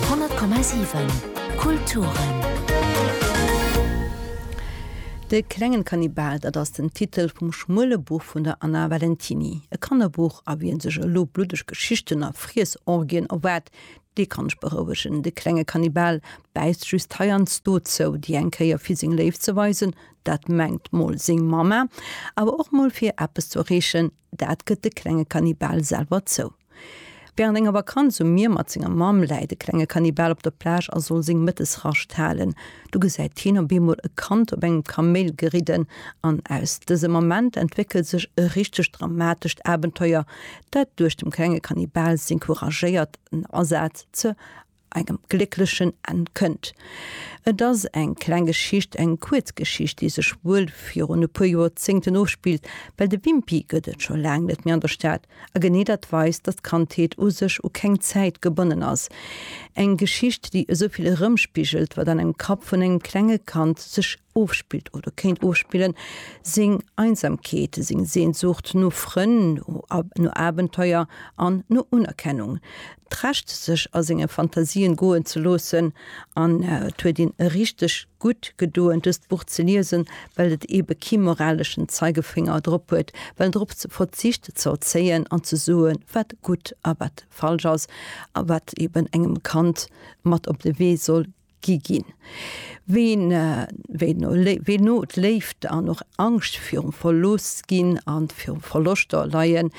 100,7 Kulturen. De klengen Kannibal, dat ass den Titel vum schmuele Buch vun der Anna Valentiny. E Kannerbuch, a wien sech elo bluddeg Geschichten a Friessorgien erwaart, dee kann ech berouegen. De klenge Kannibal bäisst just heiansdo zou, déi eng Kéier fir seng Léift ze weisen, dat mengt mol seng Mamma, awer och mol fir eppes ze erreechen, Dat gëtt de klenge Kannibal selwer zou. Wärend enger Vakanz um Mier mat senger Mamm läit de klenge Kannibal op der Plage a soll seng Mëttesrascht halen. Du gesäit hien op eemol e Kand op engem Kaméil geridden an aus dësem Ament entwéckelt sech e richtegt dramatescht Abenteuer, dat duerch dem klenge Kannibal seng couragéiert Asaz ze engem glécklechen Enn kënnt. Et ass eng kleng Geschicht, eng kuerz Geschicht, déi sech wuel virun e puer Joerzéngten ofspillt, well de Wimpy gëtt et scho laang net méi an der Stad, a genee dat weist, datt d'Kandheet u sech u keng Zäit gebonnen ass. Eng Geschicht, déi esou vill erëmspigelt, wat an engem Kapp vun engem klenge Kand sech ofspillt oder kéint ofspillen, seng Einsamkeet, seng Sehnsucht no Frënn, no Abenteuer an no Unerkennung, d'Recht sech a senge Fantasien goen ze loossen. An et huet een richteg gutt gedoen dëst Buch ze liesen, well et ebe kee moraleschen Zeigefénger drop huet, well drop verzicht ze erzéien an ze soe wat gutt a wat falsch ass, a wat eben engem Kand mat op de Wee soll gi ginn. Ween no d'Léift an och Angscht virum Verlooss ginn a virum Verloschter leien,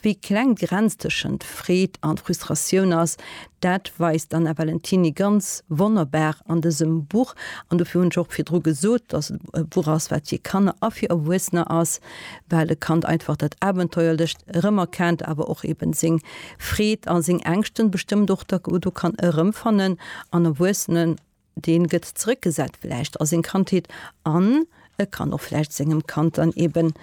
wéi kleng d'Grenz tëschent Freed an Frustratioun ass, dat weist d'Anna Valentiny ganz wonnerbar an dësem Buch. An dofir hunn ech och virdru gesot, dass et e Buch ass, wat fir Kanner a fir Erwuessener ass. well e Kand einfach dat Abenteuerlecht erëmerkennt, awer och eben seng Freed a seng Ängschten bestëmmt och da do kann erëmfannen an Erwuessenen, deen gëtt zeréckgesat vläicht a seng Kandheet an e kann och vläicht sengem Kand dann eben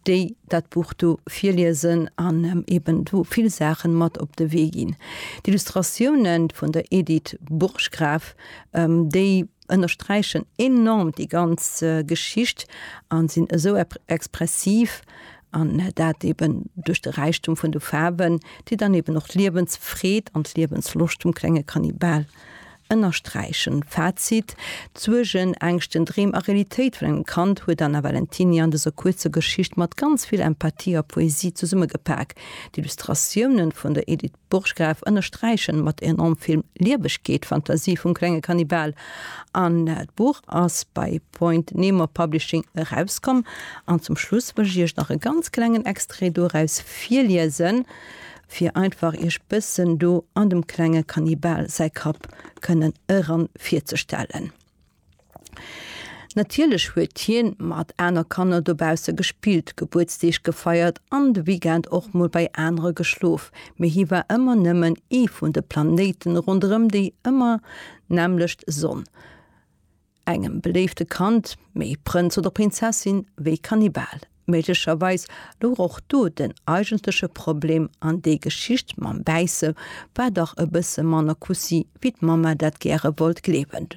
déi dat Buch do virliesen an em eben do vill Saachen mat op de Wee ginn. D'Illustratiounen vun der Edith Burggraf, déi. ënnersträichen enorm déi ganz Geschicht an sinn esou expressiv, an dat eben duerch de Räichtum vun de Faarwen, déi dann eben och d'Liewensfreed an d'Liewensloscht vum klenge Kannibal ënnersträichen. Fazit, D'Suergen, Ängschten, Dreem a Realitéit vun engem Kand huet Anna Valentiny an dëser kuerzer Geschicht mat ganz vill Empathie a Poesie zesummegepak. D'Illustratiounen vun der Edith. Burggraf ënnersträichen mat enorm vill Liewegkeet d'Fantasie vum klenge Kannibal. An d'Buch ass bei Point Nemo Publishing erauskomm. An zum Schluss wëll ech iech nach e ganz klengen Extrait doraus virliesen, fir einfach iech bëssen do an dem klenge Kannibal säi Kapp kënnen eran virzestellen. Natierlech huet hien mat aner Kanner dobausse gespillt, Gebuertsdeeg gefeiert an de Weekend och mol bei anere geschlof, mee hie war ëmmer nëmmen ee vun de Planéiten ronderëm déi ëmmer nämmlecht Sonn. Engem beléifte Kand, méi Prënz oder Prinzessin wéi Kannibal. Méiglecherweis louch och do den eigentleche Problem an déi Geschicht mam Bäisse war dach e bësse manner Kussi wéi d'Mamma dat gäre wollt gleewen.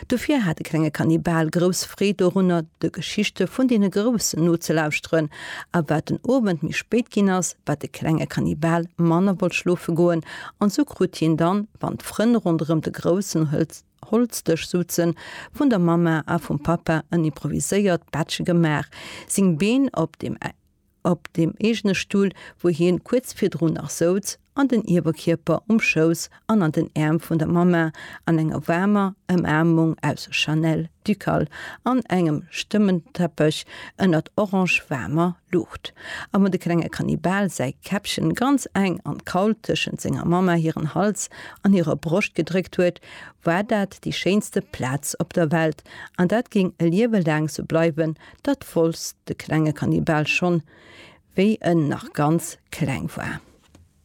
Dofir hat de klenge Kannibal grouss Freed dorunner de Geschichte vun deene Groussen nozelauschteren a wat den Owend méi spéit ginn ass, wat de klenge Kannibal manner wollt schlofe goen an sou krut hien dann, wann d'Frënn ronderëm de Groussen hëlt, Holzdësch sutzen, vun der Mamma a vum Pappa en improviséiert Bettche gemaach, seng Been op dem op dem eegene Stull, wou hien kuerz virdrun nach souz, an den Ierwerkierper um Schouss an an den Äerm vun der Mamma, an enger waarmer Ëmaarmung aus Chanel Ducal an engem Stëmmenteppech ënnert orange-waarmer Luucht, a wou de klenge Kannibal säi Käppchen ganz eng an d'Kaul tëschent senger Mamma hiren Hals an hirer Broscht gedréckt huet, war dat déi schéinste Plaz op der Welt an dat géing e Liewe laang sou bleiwen, dat wousst de klenge Kannibal schonn, wéi en nach ganz kleng war.